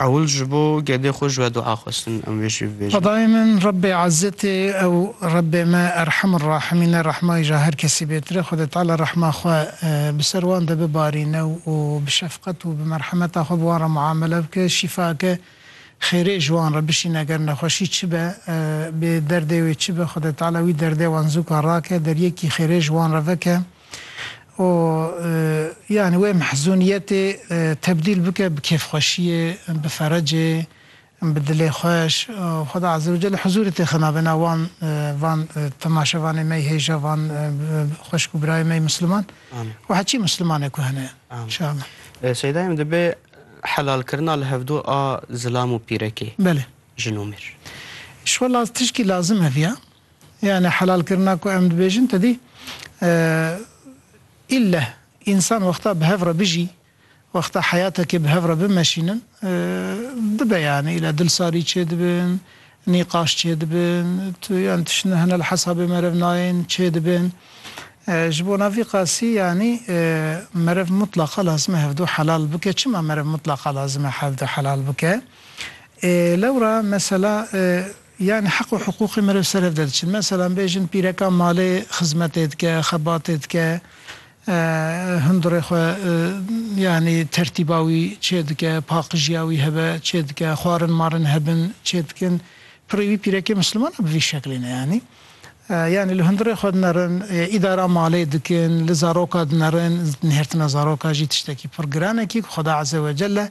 Ewil ji bo gedê xwe ji we dua xwestin, em vê jî bibêjin. Xwedayê min, Rebbê Ezzetê, ew Rebbê me Erhem û Rahimîn e, rehmayî ji her kesî bêtir e. Xwedê Teala rehma xwe bi ser wan de bibarîne û bi şefqet û bi merhemeta xwe bi wan re muamele bike, şîfake xêrê ji wan re bişîne, ger nexweşî çi be, bê derdê wê çi be, Xwedê Teala wî derdê wan zûka rake, deryekî xêrê ji wan re veke. û yanî wê mehzûniyetê tebdîl bike bi kêfxweşiyê, bi ferecê, bi dilê xweş. Xweda Azze û Celle huzûrê tê xina vena wan van temaşevanê me, hêja van xweşik û birayê me yê Misliman û heçî Mislimanek ku hene. Înşeallah. Seyda em dibe helalkirina li hevdu a zilam û pîrekê, jin û mêr. Îşwellah tişkî lazim hevîya. Yanî helalkirina ku em dibêjin tedî îlleh însan wexta bi hev re bijî, wexta heyatekê bi hev re bimeşînin dibe yanî îlleh dilsarî çêdibin, nîqaş çêdibin, yan tiştine hene li hesabê merev nayên çêdibin. Ji bo na vî qasî yanî merev mutlaqa lazim e hevdu helal bike. Çima merev mutlaqa lazim e hevdu helal bike? Ê lewra mesela Yan heq û hiqûqê me li ser ev derdiçin. Meselan bêjin pîreka malê xizmetê dike, xebatê dike, hundirê xwe yanî tertîba wî çêdike, paqijiya wî hebe çêdike, xwarin marin hebin çêdikin. Pirê wî pîrekê misliman a bi vî şeklê ne yanî. Yanî li hundirê xwe dinerin, îdara malê dikin, li zaroka dinerin, nihêrtina zaroka jî tiştekî pir giran e kî ku Xweda Ezewecelle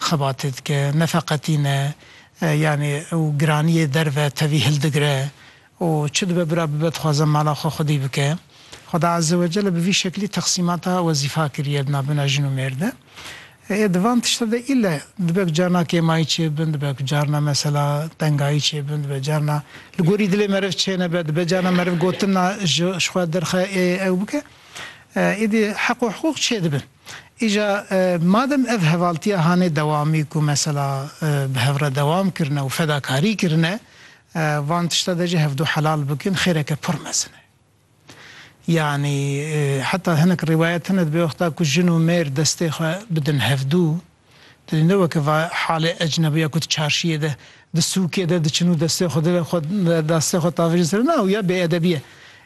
xebatê dike, nefeqetî ne yanî û giraniyê derve tevî hildigire û çi dibe bira bibe dixwaze mala xwe xwedî bike. Xweda Eze Wecele bi vî şeklî teqsîmata wezîfa kiriye di navbena jin û mêr de. Ê di van tişte de îlle dibe ku carna kêmayî çêbin, dibe ku carna mesela tengayî çêbin, dibe carna li gorî dilê meriv çênebe, dibe carna meriv gotina ji xwe derxe ê ew bike. Êdî heq û hiqûq çêdibin. Îja madem ev hevaltiya hanê dewamî ku mesela bi hev re dewam kirine û fedakarî kirine van tişta de jî hevdu helal bikin xêreke pir mezin e. Yanî heta hinek rîwayet hene di bêwexta ku jin û mêr destê xwe bidin hevdu, Tu ne weke va halê ecnebiya ku di çarşiyê de, di sûkê de diçin û destê xwe dilê xwe destê xwe tavêjin ser na û ya bêedebî ye.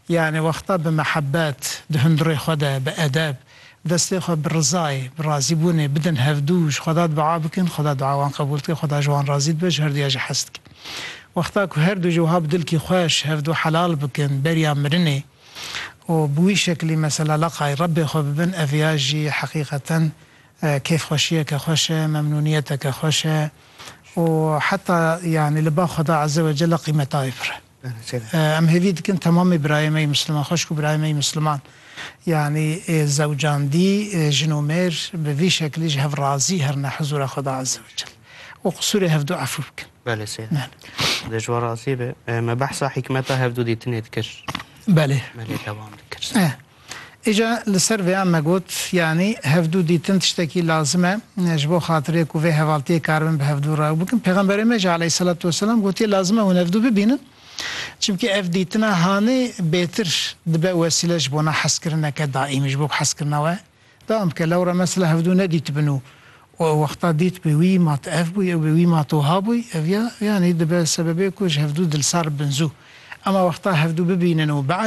Yanî wexta bi mehebet, di hundirê xwe de, bi edeb, destê xwe bi rizayê, bi razîbûnê bidin hevdû û ji Xweda dua bikin, Xweda dua wan qebûl dike, Xweda ji wan razî dibe, ji herduya jî hez dike. Wexta ku herdu jî wiha bi dilkî xweş hevdû helal bikin beriya mirinê û bi wî şeklî mesela leqay Rebbê xwe bibin, ev ya jî heqîqeten kêfxweşiyeke xweş e, memnûniyeteke xweş e û heta yanî li ba Xweda Eze we Celle qîmeta wê pir e. Em hêvî dikin temamê birayê me yê Misliman, xweşik û birayê me yê Misliman yanî zewcandî, jin û mêr bi vî şeklî ji hev razî herine hizûra Xweda Eze we Celle û qisûrê hevdu efû bikin. Belê sey e. Dê ji wan razî be. Me behsa hîkmeta hevdu dîtinê dikir. Belê. Belê dewam dikir. Îca li ser vêyan me got, yanî hevdû dîtin tiştekî lazim e ji bo xatirê ku vê hevaltiyê karibin bi hevdû re ew bikin. Pêxemberê me jî aleyhîsselatu weselam gotiye lazim e hûn hevdû bibînin. Çimkî ev dîtina hanê bêtir dibe wesîle ji bona hezkirineke daîmî ji bo ku hezkirina we dewam bike. Lewre mesela hevdû nedîtibin û ew wexta dîtibû wî ma tu ev bûyî ew bê wî ma tu wiha bûyî ev ya yanî dibe sebebê ku ji hevdû dilsar bibin zû. Ema wexta hevdû bibînin û bi